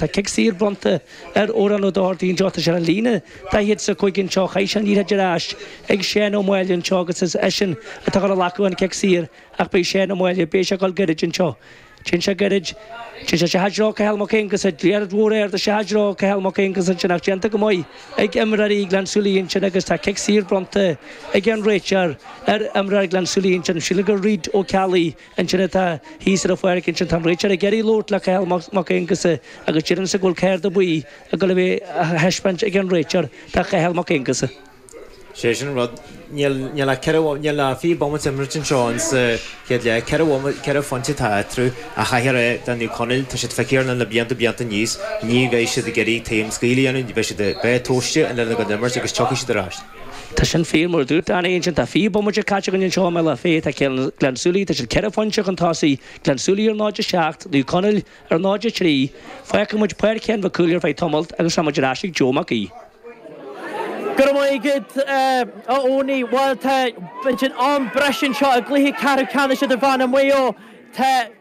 Tá cic saor bronnta ar fhoireann Uí Dháirdaoin Deoise ar an líne daichead a cúig anseo. Chaith sé an liathróid ar ais ag Seán Ó Máille anseo agus is eisean atá chun a ghlacadh an cic saor ach beidh Seán Ó Máille, beidh sé ag dul gairid anseo. Téann sé gairid. Téann sé isteach i dtreo Chathail Mac Aonghusa, liathróid mhór ard isteach i dtreo Chathail Mac Aonghusa ansin ach déanta go maith ag imreoirí Ghleann Súilí ansin agus tá cic saor bronnta ag an réiteoir ar imreoir Ghleann Súilí ansin. Sílim gur Reid Ó Ceallaigh. Ansin atá, thíos ar an pháirc ansin, tá an réiteoir ag iarraidh labhairt le Cathal Mac Aonghusa agus déarfainnse go bhfuil cárta buí ag dul a bheith á thaispeáint ag an réiteoir do Chathal Mac Aonghusa. Sé sin an rud. Níl ach ceithre, níl ach fiche bomaite imeartha anseo insa chéad leath. Ceithre bhomaite, ceithre phointe atá eatarthu ach caithfear a rá, Naomh Conaill, tá siad feicthe ar line le blianta, blianta anois, ní bheidh siad ag iarraidh taom scaoill a dhéanamh, beidh siad, beidh a, tóirse, an line go imirt agus tiocfaidh siad ar ais. Tá sin fíor, mar a dúirt Danny ansin. Tá fiche bomaite caite againn anseo i mBealach Féich. Tá Cill Gleann tSúilí, tá siad ceithre phointe chun tosaigh, Gleann tSúilí ar 0-7, Naomh Conaill ar 0-3. Fágfaidh muid Páirc Sheáin Mhic Cumhaill ar feadh tamailt agus tá muid ar ais ag Joe Mac Aoidh. Go raibh maith agat, a Eoiní. Bhuel, tá an t-am breise anseo i gcluiche ceathrú ceannais idirmheánach Mhaigh Eo, tá.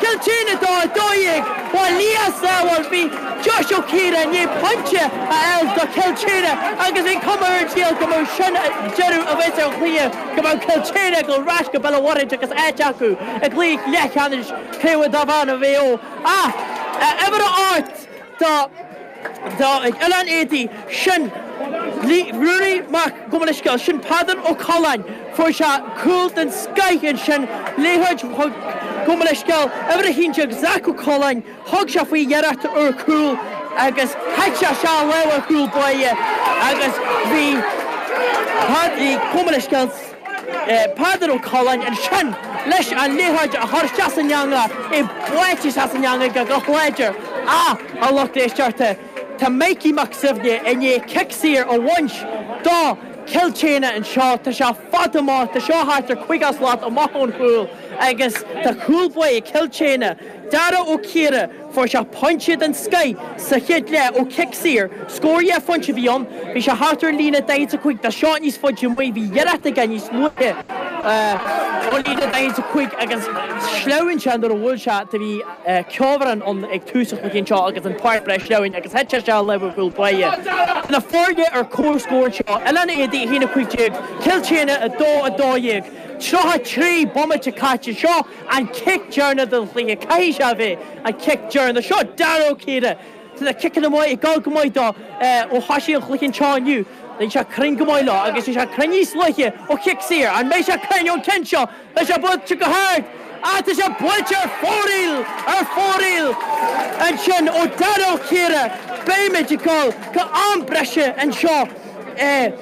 Cill tSéadhna 2, 12, Ba leas amhail bhí Josh Ó Ciardha i ndiaidh pointe a fháil do Chill tSéadhna agus bhí cuma ar an scéal go mbeadh sin an deireadh a bhaint an chluiche go mbeadh Cill tSéadhna ag dul ar ais go Béal a Mhuirthid agus áit acu i gcluiche leathcheannais Craobh Idirmheánach Mhaigh Eo ach uimhir a 8 Tá tá ag Oileán Éadaí, sin Ruairí Mac, gabh mo leithscéal, sin Peadar Ó Coileáin, fuair sé cúl den scoith ansin, liathróid, gabh mo leithscéal, uimhir a haon déag, Zach Ó Coileáin, thug sé faoi iarracht ar chúl agus thit sé as a' láimh ar chúl báire agus bhí Pádraig, gabh mo leithscéal, Peadar Ó Coileáin ansin leis an liathróid a chur san eangach, í buailte san eangach go láidir ach a lucht éisteachta. Tá Micí Mac Suibhne i ndiaidh cic saor a bhaint do Chill tSéadhna anseo, tá sé fada amach, tá seo thart ar chaoga slat amach ón chúl agus tá cúl báire Cill tSéadhna, Dara Ó Ciardha, Fuair sé pointe den scoith sa chéad leath ó chic saor. Scór dhá phointe a bhí ann. Bhí sé thart ar an líne 45 dhá shlat níos faide amuigh a bhí iarracht aige níos luaithe ón líne 45 agus shleamhain sé nuair a bhuail sé do bhí ceobhrán ann ag tús an chluiche anseo agus an pháirc breá sleamhain agus thit sé sa láimh ar chúl báire na foirne ar comhscór anseo. Oileán Éadaí 1 15 Cill tSéadhna 2 12 33 bomaite caite anseo. an cic deireanach den chluiche, caithfidh sé a bheith an cic deireanach seo, Dara Ó Ciardha tá na ciceanna amach ag dul go maith dó ó thosaigh an chluiche anseo inniu, bhí sé cruinn go maith leo agus bhí sé cruinn níos luaithe ó chic saor, an mbeidh sé cruinn ón gceann seo? Tá sé buailte go hard ach tá sé buailte ar fóraoil, ar fóraoil ansin ó Dara Ó Ciardha, beimid ag dul go am breise anseo. eh,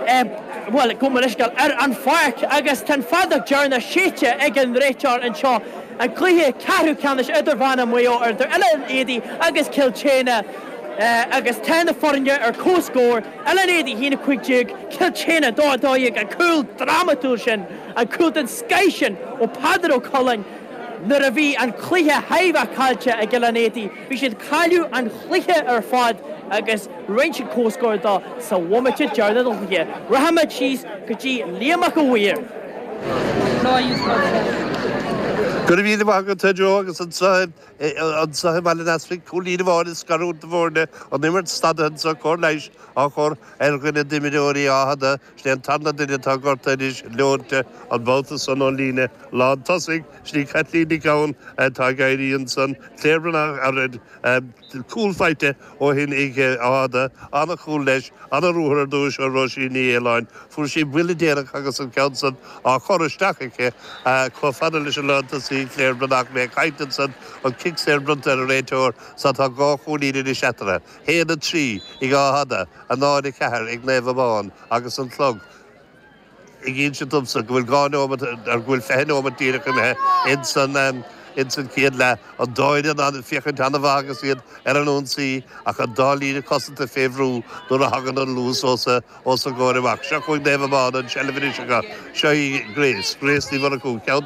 eh, bhuel, gabh mo leithscéal, ar an pháirc agus tá an fheadóg dheireanach séidte ag an réiteoir anseo an cluiche ceathrú ceannais idirmheánach Mhaigh Eo eadar Oileán Éadaí agus Cill tSéadhna eh, agus tá na foirne ar comhscór, Oileán Éadaí 1, 15, Cill tSéadhna 2, 12, an cúl drámatúil sin, an cúl den scoith sin ó Peadar Ó Coileáin nuair a bhí an cluiche chóir a bheith caillte ag Oileán Éadaí. Bhí siad ag cailleadh an chluiche ar fad agus rinne siad comhscór de sa bhomaite deireanach den chluiche. Rachaimid síos go dtí Liam Mac a' Mhaoir. Go raibh míle maith agat a Joe agus anseo i mBaile an Easpaig cúilín amháin ag scarúint na bhfoirne, an imirt stadaithe anseo, cóir leighis á chur ar dhuine d'imreoirí Áth Fhada. Is é an tarna duine atá gorta anois, leointe, an babhta san ón líne lán tosaigh, is í Caitlín Nic Gabhann atá ag éirí ansan, Claire Bhreathnach a raibh cúl faighte ó shin ag Áth Fhada, an-chúl leis, an-ruathar ar dtúis ó Róisín Ní Fhaoláin, fuair sí buille déanach agus an ceann san á chur isteach aici chomh fada leis an lán tosaigh, Claire Bhreathnach, mé ag caint ansan, an cic saor bronnta ag an réiteoir, is tá dhá chúilín anois eatarthu. 1, 3, ag Áth Fhada, 0, 4, ag Naomh Abán agus an clog ag insint domsa go bhfuil dhá neomat, go bhfuil fiche neomat díreach imithe ins an chéad leath, an dá fhoireann ag féachaint an-mhaith agus iad ar an ionsaí ach an dá líne cosanta fé bhrú nuair a thagann an luas os a gcomhair amach. Seo chugainn Naomh Abán, an tseilbh anois acu, seo í Grace, Grace Ní Mhurchú, ceann